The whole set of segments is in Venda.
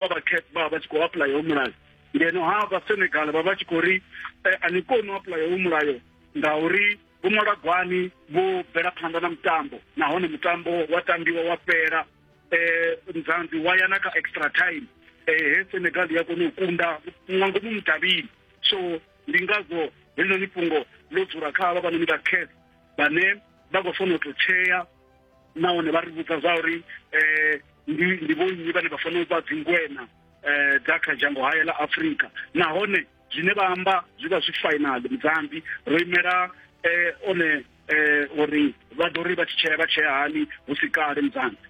vha vha cap vha vha tshi khou apuḽaya ho mulayo ngeno ha vha senegal vha vha tshi khou ri eh, a ni koni u apuḽaya ho mulayo ngauri vho ṅwala gwani vho bvela phanḓa na mutambo nahone mutambo wa tambiwa wa fhela um nzanzi wa ya na kha extra time um he senegal ya kona u kunda nga ngomu mudavhini so ndi ngazwo helinoni fhungo ḽo dzula kha havha vhanoni vha cas vhane vha khou fanela u tou tshea nahone vha ri vhudza zwa uri um ndi ndi vhonnyi vhane vha fanela u vha dzingwena um dza kha dzhango haye ḽa afurika nahone zwine vha amba zwi vha zwi final mudzambi ro imela um one um uri vha ḓo ri vha tshi tshea vha tshea hani hu si kale mudzambi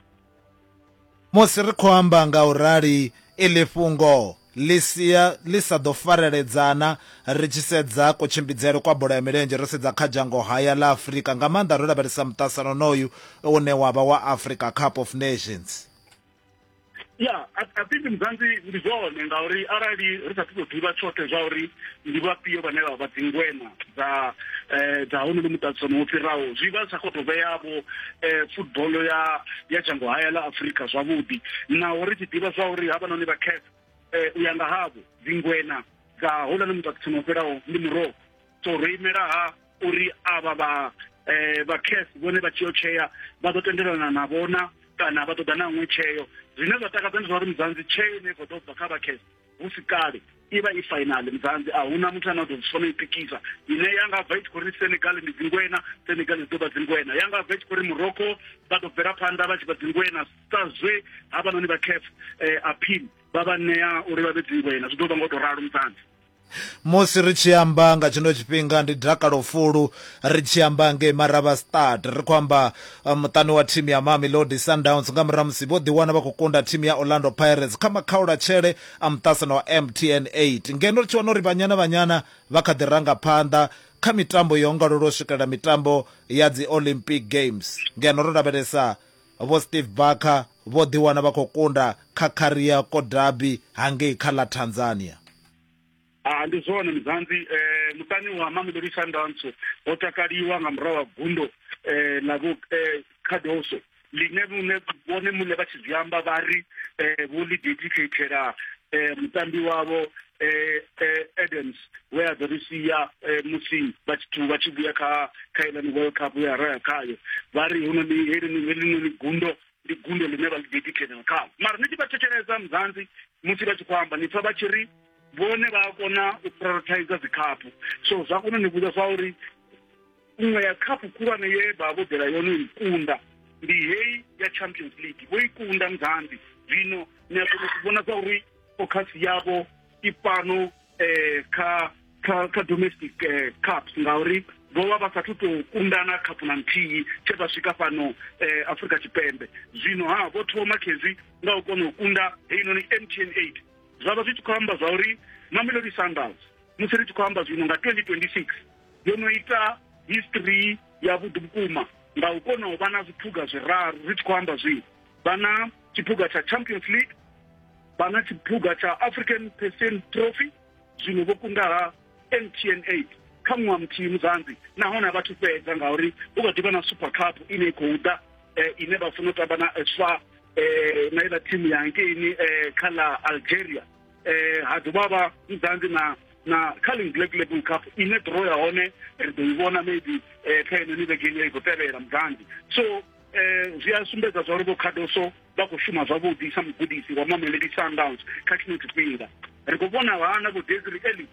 Musi ri khou amba nga u rali, iḽi fhungo ḽi sia ḽi sa ḓo fareledzana ri tshi sedza kutshimbidzele kwa bola ya milenzhe ro sedza kha dzhangohaya ḽa Afrika, nga maanḓa ro lavhelesa muṱasano wonoyu une wa vha wa Africa Cup of Nations. Ya, I think Mzansi ndi zwone ngauri arali ri sa athu tou ḓivha tshoṱhe zwa uri ndi vhafhio vhane vha vha dzingweṋa, dza eh, dza honono muṱaṱisano wo fhiraho zwi vha sa khou tou vheyavho eh, football ya ya dzhango haya ḽa afurika zwavhuḓi naho ri tshi ḓivha zwa uri havhanoni vha caf eh, u ya nga havho dzingwena dza houlani muṱaṱisano wo fhiraho ndi muroho so ro imela ha uri avha vha eh, vha caf vhone vha tshi yo tshea vha ḓo tendelana na vhona kana vha ṱoḓa na ṅwe tsheo zwine zwa takadza ndi zwa uri muzanzi tsheo ine i khou ḓo bva kha vha caf hu si kale i vha i fainali muzanzi a huna muthu ane a ḓo zwisona i pikisa ine ya nga bva i tshi khou ri senegal ndi dzingwena senegal dzi ḓo vha dzingwena ya nga bva i tshi khou ri morocco vha ḓo bvela phanḓa vha tshi vha dzingwena sa zwe havhanoni vha caf eh, appeal vha vha ṋea uri vha vhe dzingwena zwi ḓo vha nga u tou ralo muzanzi musi ri tshi amba nga tshino tshifhinga ndi dakalo fulu ri tshi amba ngei maraba stad ri khou amba muṱani wa thimu ya Mamelodi Sundowns nga murahu ha musi vho ḓiwana vha khou kunda thimu ya Orlando Pirates kha makhaulatshele a muṱasano wa MTN 8 ngeno ri tshi wana uri Banyana Banyana vha kha ḓi ranga phanḓa kha mitambo yo ongalula u swikelela mitambo ya dzi Olympic Games ngeno ro lavhelesa Vho Steve Barker vho ḓiwana vha khou kunda kha Kariakoo Derby hangei kha ḽa Tanzania. Ah, ndi zwone muzanzi eh, muṱani wa mamelodi sundowns ho takaliwa nga murahu wa gundo eh, ḽa vho eh, cardoso ḽine vhune vhone muṋe vha tshi zwi amba vha ri eh, vho ḽi dedicatela eh, mutambi wavho eh, eh, adams we a ḓo ri sia eh, musi vha tshi thu- vha tshi vhuya kha kha iḽani world cup ya raya khayo vha ri hunoni helinoni gundo ndi gundo ḽine vha ḽi dedicatela khayo mara ni tshi vha thetshelesa muzanzi musi vha tshi khou amba ni pfa vha tshi ri vhone vha a kona u prioritizer dzikhaphu so zwa kona ni vhudza zwa uri nngwe ya khaphu khulwane ye vha vho ḓela yone i kunda ndi heyi ya champions league vho i kunda mzambi zwino ni a kona u vhona zwa uri focus yavho i fhano um kha kha kha domestic um cups ngauri vho vha vha sathu tou kundana khaphu na nthihi tshe vha swika fhano um afrika tshipembe zwino ha vho thoma khezwi nga u kona u kunda heinoni mtn eight zwa vha zwi tshi khou amba zwa uri mamelodi sundowns musi ri tshi khou amba zwino nga 2026 yo no ita history yavhuḓi vhukuma nga u kona u vha na zwiphuga zwiraru ri tshi khou amba zwino vha na tshiphuga tsha champions league vha na tshiphuga tsha african percent trophy zwino vho kundaha mtn 8 kha ṅwaha muthihi muzanzi nahone a vha thu fhedza ngauri hu kha ḓivha na super cup ine i khou ḓa eh, ine vha funa u tamba na swa eh, na iḽa thimu ya nkeini eh, kha ḽa algeria eh, ha dovha vha muzanzi na na kha ling black label cup ine draw ya hone ri ḓo i vhona maybe eh, kha ine ni vhegeni i khou tevhela muzanzi so eh, zwi a sumbedza zwa uri vho khadoso vha khou shuma zwavhuḓi sa mugudisi wa mamelodi sundowns kha tshino tshifhinga ri khou vhona vhana vho desri eli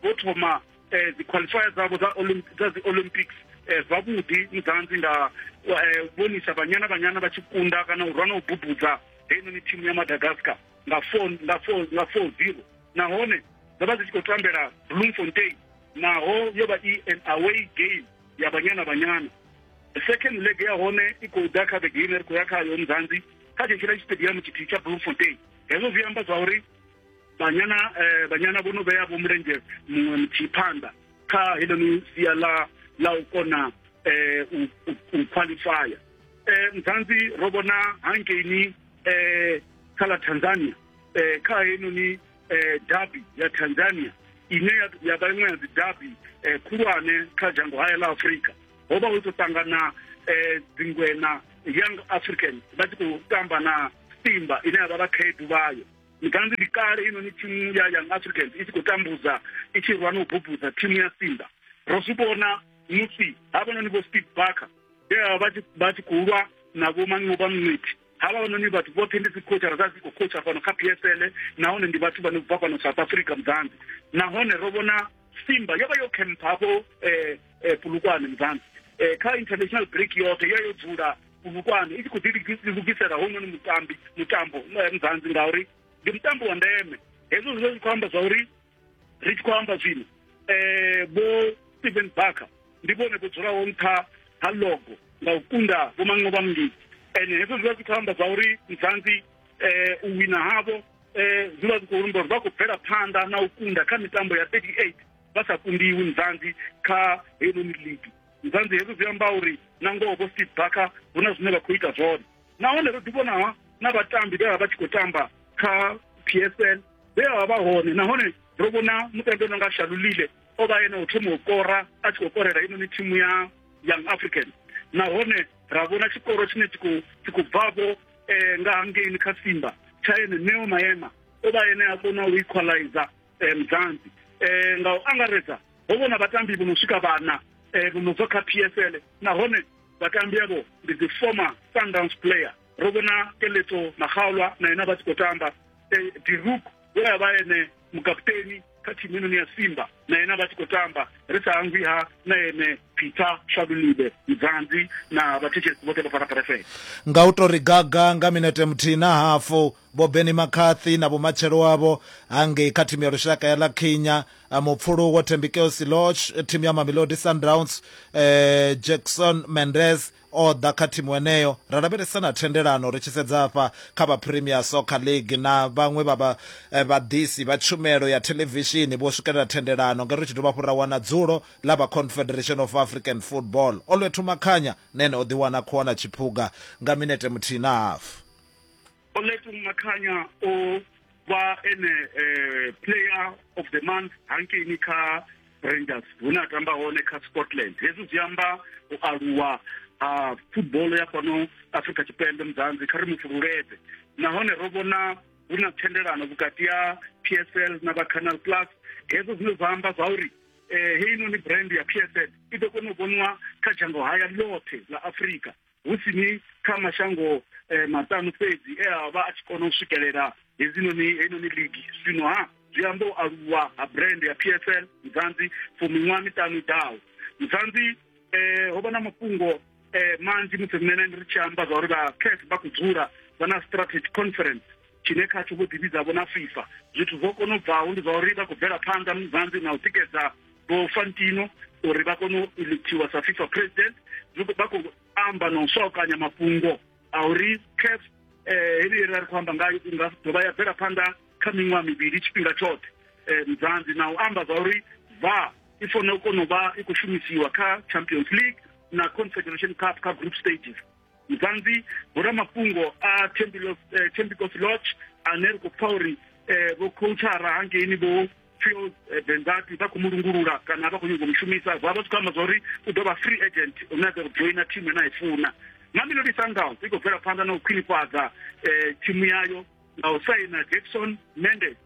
vho thoma um dzi-qualifier dzavho dza dzi olympics um zwavhuḓi mudzanzi nga um vhonisa vhanyana vhanyana vha tshi kunda kana u rwa na u bubudza heinoni thimu ya madagascar nga four nga four nga four zero nahone dzo vha dzi tshi khou tambela bloemfontein naho yo vha i an away game ya banyana banyana second leg ya hone i khou ḓa kha vhege ine ri khou ya khayo mzanzi kha tshetshiḽa tshitediamu tshithihi tsha bloemfontein hezwo zwi amba zwa uri banyana eh, banyana vho no vhea vho mulenzhe muṅwe muthihi phanḓa kha heḽoni sia ḽa ḽa u kona um u qualifya um mzanzi ro vhona hankeini um kha ḽa tanzania um kha heinoni eh, dabi ya tanzania ine ya- ya vha iṅwe ya dzi dabi eh, khulwane kha dzhango hayo ḽa afurika ho vha hu tshi khou ṱangana eh, dzingwena young african vha tshi khou tamba na simba ine ya vha vha khaedu vhayo mikanzi ndi kale inoni thimu ya young african i tshi khou tambudza i tshi rwa na u bubudza thimu ya simba ro zwi vhona musi havhanoni vho steve barker vha tshi- vha tshi khou lwa na vho manqoba mnwithi havhanoni vhathu vhoṱhe ndi dzikhotshara dza dzi khou khotshara fhano kha psl nahone ndi vhathu vhane bva fhano south africa mudzanzi nahone ro vhona simba yo vha yo khempha hafho um eh, eh, pulukwane mudzanzi um kha international break yoṱhe yo yo dzula pulukwane i tshi khou ḓilugisela hounoni mutambi mutambo mudzanzi ngauri ndi mutambo wa ndeme hezwo zwi zwi khou amba zwa uri ri tshi khou amba zwino eh bo Stephen Barker ndi vhone vho dzulaho nṱha ha logo nga u kunda vho maṅwe vha mngidi and hezwo zwi vha zwi khou amba zwa uri nzanzi eh u wina havho eh zwi vha zwi khou rumba uri vha khou bvela phanḓa na u kunda kha mitambo ya 38 vha sa kundiwi nzanzi kha heinoni ligi nzanzi hezwo zwi amba uri na ngoho vho Steve Barker hu na zwine vha khou ita zwone nahone ro ḓivhona na vhatambi vhe vha vha tshi khou tamba kha psl vhe vha vha hone nahone ro vhona mutambi no nga shalulile o vha ene u thoma u kora a tshi khou korela inoni thimu ya young african nahone ra vhona tshikoro tshine tshi khou bvavho um eh, nga hangeini kha simba tsha ene neo maema o vha ene a kona u equalizer eh, mudzanzi eh, nga u angaredza ho vhona vhatambi vho no swika vhana eh, vho no bva kha psl nahone vhatambi avho ndi dzi former sundowns player ro vhona keletso makgaolwa na yena vha tshi khou tamba eh, diruk we a vha ene mukaputeni kha thimu inoni ya simba na yena vha tshi khou tamba ri sa hangwi ha na ene peter shalulibe mdzanzi na vhathetshelesi vhoṱhe vha fana pharafele nga u tou ri gaga nga minete muthihi na hafu Vho Benni McCarthy na vhumatshelo avho ha ngei kha thimu ya lushaka ya La Kenya, mupfulu wo Thembikeo Siloch, thimu ya Mamelodi Sundowns, eh, Jackson Mendez o ḓa kha thimu eneyo. Ra lavhelesa na thendelano ri tshi sedza afha kha vha Premier Soccer League na vhaṅwe vha vha eh, vhaḓisi vha tshumelo ya thelevishini vho swikelela thendelano ngeno ri tshi dovha hafhu ra wana dzulo ḽa vha Confederation of African Football. Olwethu Makhanya nene o ḓiwana khou wana tshiphuga nga minete muthihi na hafu. Oletong Makhanya o vha ene eh, player of the month hankeini kha rangers hune a tamba hone kha scotland hezwi zwi amba u aluwa ha football ya fhano afrika tshipembe muzanzi kha ri mu fhululeze nahone ro vhona hu na thendelano vhukati ha p s l na vha canal plus hezwo zwine zwa amba zwa uri eh, heinoni brand ya p s l i ḓo kona u vhoniwa kha dzhango haya ḽoṱhe ḽa afrika hu si ni kha mashango eh, maṱanu fhedzi e a vha a tshi kona u swikelela hedzinoni heinoni ligi zwino ha zwi amba u aluwa ha brand ya p s l mzanzi for miṅwaha miṱanu i ḓaho mzanzi eh, ho vha na mafhungo eh, manzhi musi riṋe ri tshi amba zwa uri vha caf vha khou dzula vha na strategy conference tshine khatsho vho ḓivhidzavho na fifa zwithu zwo kona u bvaho ndi zwa uri vha khou bvela phanḓa mzanzi na u tikedza vho fantino uri vha kone u electiwa sa fifa president vha khou amba na u swakanya mafhungo a uri caf eh, heneyi ra ri khou amba ngayo i nga dovha ya bvela phanḓa kha miṅwaha mivhili tshifhinga tshoṱhe eh, mzanzi na u amba zwa uri va i fanela u kona u vha i khou shumisiwa kha champions league na confederation cup kha group stages mzanzi vhoramafhungo a tembicos eh, lodge ane ri khou pfa uri um vho coachara hangeini vho fuels eh, benzati vha khou mu lungulula kana vha khou nyanga u mushumisa vha vha zwi khou amba zwa uri u ḓo vha free agent u nyaga u joina thimu ene a i funa mamelodi sundowns i khou bvela phanḓa na u khwinifhadza um thimu yayo nga u saina jackson mendes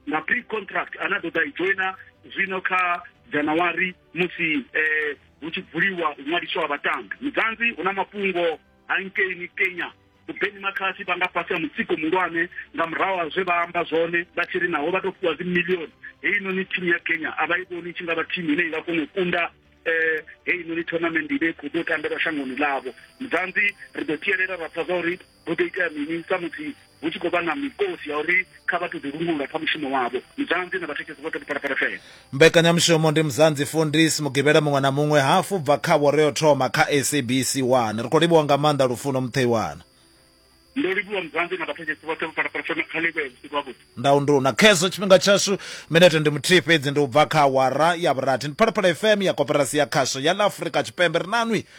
na pre contract ane a ḓo ḓa i joina zwino kha january musi um hu tshi bvuliwa u ṅwaliswa vhatambi mudzanzi hu na mafhungo hangei ni kenya mubeni makhasi vha nga fhasi ha mutsiko muhulwane nga murahu ha zwe vha amba zwone vha tshi ri naho vha tou fhiwa dzimillioni heinoni thimu ya kenya a vha i vhoni tshi nga vha thimu ine i nga kona u kunda um heinoni tournament ine khou ḓo tambelwa shangoni ḽavho muzanzi ri ḓo tielela ra pfa zwa uri hu ḓo itea mini samusi hu tshi khou vha na mikosi ya uri kha vha ṱoḓi lungula kha mushumo wavho muzanzi na vhathekesi vhoṱhe vhuphalaphala fela mbekanyamushumo ndi muzanzi fundis mugivhela muṅwe na muṅwe hafu bva kha vho ri o thoma kha sabc 1 ri khou livhuwa nga maanḓa lufuno mutheiwana ndo livhuwa muzanzi na vhathekesi vhoṱhe vhuphalaphala fela kha livhuwe vhusiku havhuḓi ndau ndu na khezwo tshifhinga tshashu minete ndi muthihi fhedzi ndi u bva kha awara ya vhurathi ndi phalaphala fm ya koperasi ya khasho ya ḽa afurika tshipembe ri nanwi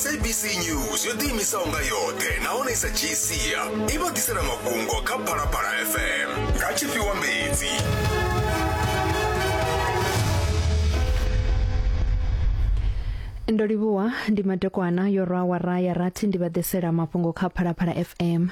sabc news yo ḓiimisaho nga yoṱhe nahone i sa dzhii sia i vha ḓisela mafhungo kha phalaphala fm nga tshifhiwa mbedzi ndo livhuwa ndi madekwana yo rwa awara ya rathi ndi vha ḓisela mafhungo kha phalaphala fm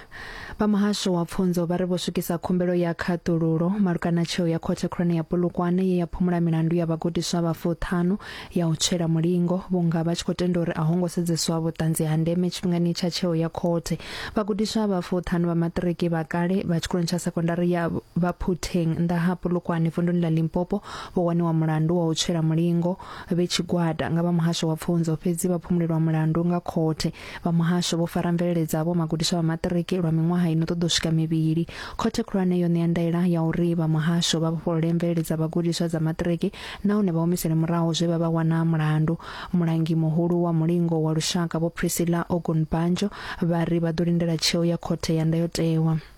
Vha muhasho wa pfunzo vha ri vho swikisa khumbelo ya khaṱululo malugana tsheo ya khothe khulwane ya Polokwane ye ya phumula milandu ya vhagudiswa vha fuṱhanu ya u tswela mulingo vhunga vha tshi khou tenda uri a ho ngo sedzeswa vhuṱanzi ha ndeme tshifhingani tsha tsheo ya khothe. Vhagudiswa vha fuṱhanu vha maṱiriki vha kale vha tshikoloni tsha sekondari ya Vhaphuteng nnḓa ha Polokwane vunduni ḽa Limpopo vho waniwa mulandu wa u tswela mulingo vhe tshigwada nga vha muhasho wa pfunzo fhedzi vha phumulelwa mulandu nga khothe. Vha muhasho vho fara mvelele dzavho magudiswa vha maṱiriki lwa miṅwaha i no ṱoḓa u swika mivhili. Khothe Khulwane yo ṋea ndaela ya uri vha muhasho vha vhofholole mvelele dza vhagudiswa dza maṱiriki nahone vha humisele murahu zwe vha vha wana mulandu. Mulangi muhulu wa mulingo wa lushaka Vho Priscilla Ogunbanjo vha ri vha ḓo lindela tsheo ya Khothe ya Ndayotewa.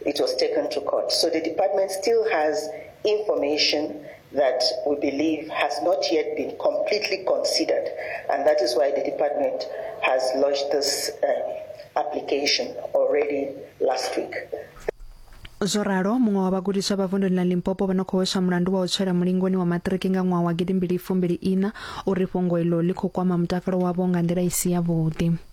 it was taken to court. So the department still has information that we believe has not yet been completely considered, and that is why the department has lodged this uh, application already last week. zwo ralo muṅwe wa vhagudiswa vha vunduni ḽa limpopo vha no khou hweswa mulandu wa u tswela mulingoni wa maṱiriki nga ṅwaha wa gidimbili fumbili ina uri fhungo iḽo ḽi khou kwama mutakalo wavho nga nḓila i si yavhuḓi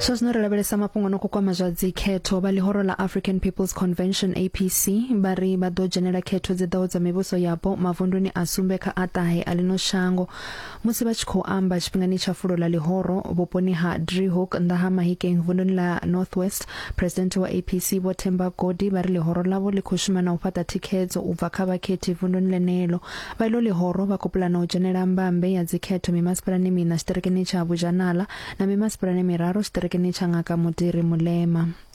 zwa zwino ri lavhelesa mafhungo no kukwama zwa dzikhetho vha ḽihoro ḽa african peoples convention apc vha ri vha ḓo dzhenela khetho dzi ḓaho dza mivhuso yapo mavunduni a sumbe kha a ṱahe a ḽino shango Musi vha tshi khou amba tshifhingani tsha fulo ḽa ḽihoro vhuponi ha Driehoek nnḓa ha Mahikeng vunduni ḽa North West, Phresidennde wa APC Vho Themba Godi vha ri ḽihoro ḽavho ḽi khou shuma na u fhaṱa thikhedzo u bva kha vhakhethi vunduni ḽeneḽo. Vha iḽo ḽihoro vha khou pulana u dzhenela mbambe ya dzikhetho mimasipalani miṋa tshiṱirikini tsha Bujanala na mimasipalani miraru tshiṱirikini tsha Ngaka Mudiri Mulema.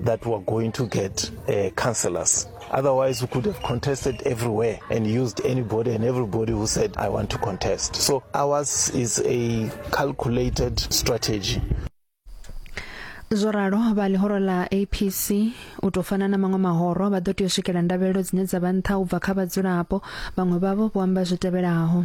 that were going to get uh, councillors. Otherwise, we could have contested everywhere and used anybody and everybody who said, I want to contest. So ours is a calculated strategy. zwo ralo vha ḽihoro ḽa apc u tou fana na maṅwe mahoro vha ḓo tea u swikela ndavhelelo dzine dza vha nṱha u bva kha vhadzulapo vhaṅwe vhavho vho amba zwi tevhelaho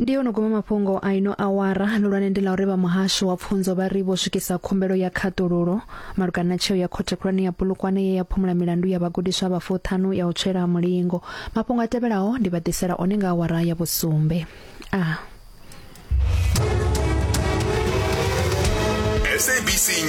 ndi yo no guma mafhungo a ino awara lulwane ndi ḽa uri vha muhasho wa pfunzo vha ri vho swikisa khumbelo ya khaṱululo malugana na tsheo ya khothe khulwane ya bulukwane ye ya phumula milandu ya vhagudiswa vha fuṱhanu ya u tswela mulingo mafhungo a tevhelaho ndi vha ḓisela one nga awara ya vhusumbe a ah. SABC News.